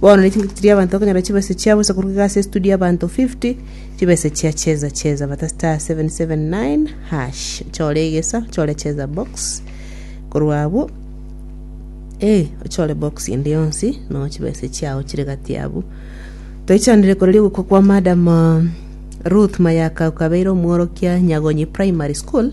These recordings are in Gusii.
Bono ne chingaki chiria abanto bakonyora chibesa chiabo ase korwa iga ase estudio y'abanto 50 chibesa chia cheza cheza bata star 779 hash ochore egesa ochore cheza box korwa abwo eh ochore box ende yonsi no chibesa chiao chire gati abwo toichanire koreri ogokwa kwa madam uh, Ruth Mayaka okabeire omworokia Nyagonyi Primary School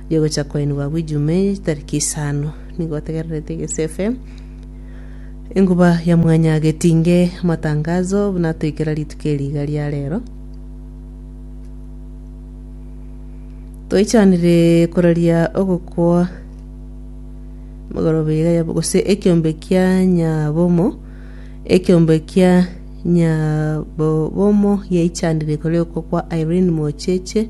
Rigocha koenigwa agwo ejuma eye chitariki isano, nigo otegererete egesefe, enguba ya mwanya getinge amatangazo buna atoikera rituko eri iga ria rero. Toichanire koraria ogokwa mogoroba iga ya gose ekiombe kia nyabomo ekiombe kia nyabobomo yaichanire koria okwo kwa Irene Mocheche